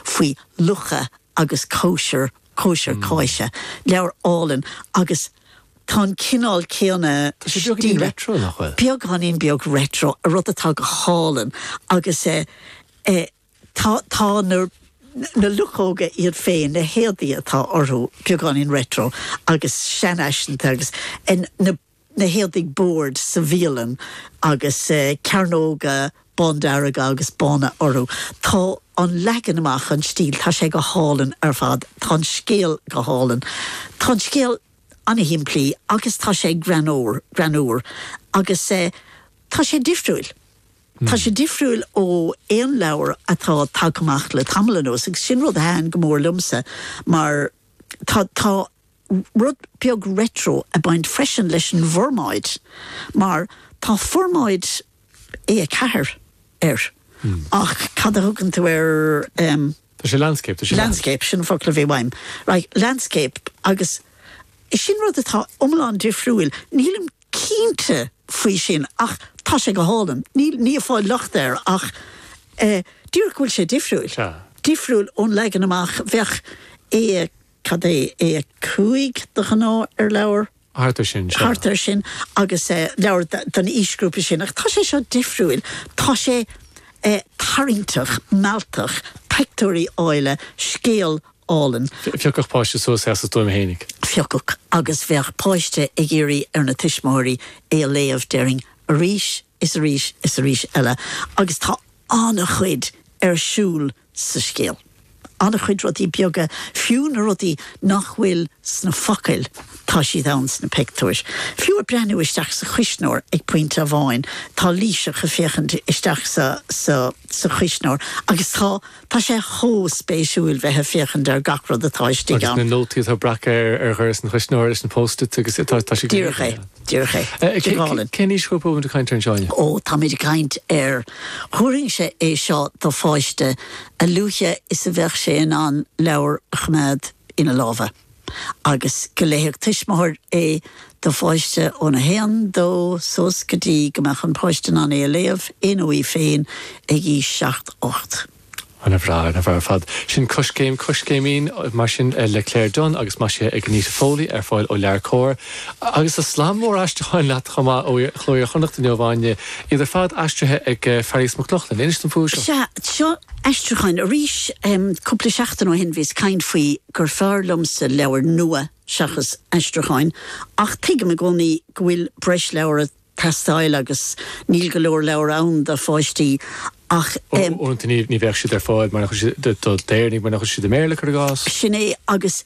faoi lucha agus cóisir, cóisir cáise, leabhar álainn agus tá an cineál céanna stíle, beagáinín beag retro, a rud atá go hálainn agus tá na na luchóga iad féin, na héadaí atá orthu, beagáinín retro agus seanfhaiseanta agus na. na héadaigh boird sa bhialann agus cearnóga bándearga agus bána orthu. Tá an leagan amach, an stíl, tá sé go hálainn ar fad. Tá an scéal go hálainn. Tá an scéal an-shimplí agus tá sé greannmhar, greannmhar agus tá sé difriúil. Tá sé difriúil ó aon leabhar atá tagtha amach le tamall anuas agus sin rud a thaitin go mór liomsa mar tá, tá, rud beag retro ag baint freisin leis an bhformáid mar tá formáid A4 air ach cad a thugann tú ar em. Tá sé landscape, tá sé. landscape, sin an focal a bhí uaim, right, landscape agus sin rud atá iomlán difriúil, nílim cinnte faoi sin ach tá sé go hálainn, níl, ní ag fáil locht air ach eh díreach go bhfuil sé difriúil, difriúil ón leagan amach bheadh i Cad é A5 de ghnáth ar leabhar? Thart ar sin, sure. Thart ar sin agus leabhar don aoisghrúpa sin ach tá sé seo difriúil, tá sé tarraingteach, mealltach, pictiúirí áille, scéal álainn. Phiocfadh páiste suas é as a stuaim fhéinig. Phiocfadh agus bheadh páiste ag iarraidh ar na tuismitheoirí é a léamh déarfainn arís is arís is arís eile agus tá an-chuid ar siúl sa scéal. An-chuid rudaí beaga, fiú na rudaí nach bhfuil sna focail tá siad ann sna pictiúir. Fiú ag breathnú isteach sa chuisneoir ag pointe amháin tá Laoiseach ag féachaint isteach sa chuisneoir agus tá Tá sé chomh spéisiúil bheith ag féachaint ar gach rud atá istigh ann. Agus na nótaí atá breactha ar dhoras an chuisneora leis na post-its agus tá siad go hiontach. Díreach é, díreach é. Go hálainn. Cén aoisghrúpa a bhfuil tú ag caint air anseo inniu? Ó, táimid ag caint ar, thabharfainnse é seo do pháiste a luaithe is a bheadh sé in ann leabhar a choimeád ina lámha. agus go léifeadh tuismitheoir é do pháiste ón 1, 2 suas go dtí go mbeadh an páiste in ann é a léamh é nó í féin ag aois 7, 8. Ana bhreá, ana bhreá ar fad. Sin Coiscéim, Coiscéimín, mar sin, le Claire Dunne agus maisithe ag Anita Foley, ar fáil ó LeabhairCOMHAR. Agus tá slam mór aistriúcháin leat chomh maith ó Chló Iar-Chonnacht inniu, Áine, iad ar fad aistrithe ag Fearghas Mac Lochlainn. Inis dom faoi seo. Sea, seo aistriúcháin. Arís, cúpla seachtain ó shin bhíos ag caint faoi gur fearr liomsa leabhair nua seachas aistriúcháin, ach tuigim i gcónaí go bhfuil breis leabhar ag teastáil agus níl go leor leabhar ann do pháistí ach eh. Uaireanta ní bheadh siad ar fáil do d'Éireannaigh, mar nach bhfuil siad i mBéarla, cur i gcás. Sin é, agus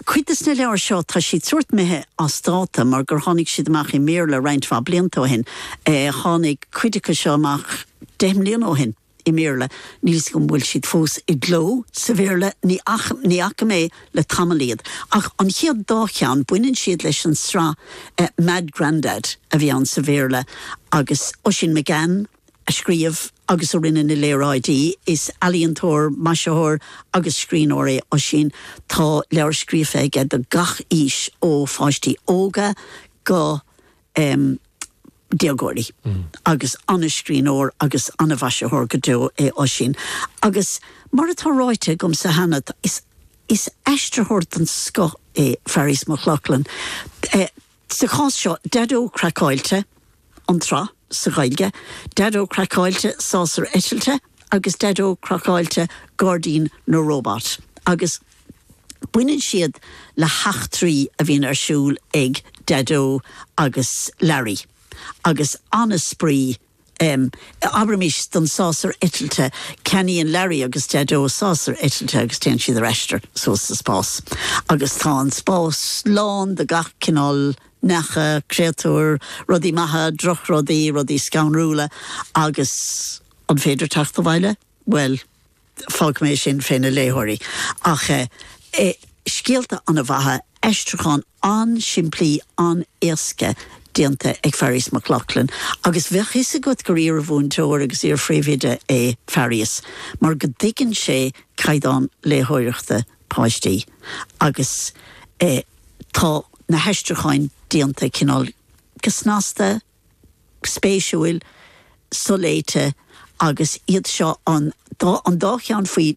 cuid de na leabhair seo tá siad sórt imithe as dáta mar gur tháinig siad amach i mBéarla roinnt mhaith blianta ó shin, eh tháinig cuid acu seo amach deich mbliana ó shin. i mBéarla, níl fhios agam an bhfuil siad fós i gcló sa Bhéarla, ní fhaca mé le tamall iad, ach an chéad dá cheann, baineann siad leis an sraith Mad Grandad a bhí ann sa Bhéarla agus Oisín McGann a scríobh agus a rinne na léaráidí, is ealaíontóir, maisitheoir agus scríbhneoir é Oisín, tá leabhair scríofa aige do gach aois ó pháistí óga go. déagóirí agus an-scríbhneoir agus an-mhaisitheoir go deo é Oisín agus mar atá ráite agamsa cheana is aistritheoir den scoth é Fearghas Mac Lochlainn. Sa chás seo, Daideo Craiceáilte, an tsraith, sa Ghaeilge, Daideo Craiceáilte, Sásar Eitilte, agus Daideo Craiceáilte Gairdín na Róbat agus baineann siad le heachtraí a bhíonn ar siúl ag Daideo agus Larry agus an-spraoi. Abraimis don sásar eitilte, ceannaíonn Larry agus Daideo sásar eitilte agus téann siad ar aistear suas sa spás agus tá an spás lán de gach cineál neacha, créatúir, rudaí maithe, drochrudaí, rudaí scanrúla agus. An féidir teacht abhaile? Bhuel, fágfaidh mé sin fé na léitheoirí. Ach eh, scéalta ana mhaithe, aistriúcháin an-simplí, an-éasca, déanta ag Fearghas Mac Lochlainn. Agus bheadh fhios agat gur iarmhúinteoir agus iarphríomhoide é Fearghas, mar go dtuigeann sé caighdeán léitheoireachta páistí. Agus eh, tá na haistriúcháin déanta cineál go snasta, spéisiúil, soléite agus iad seo an dá cheann faoi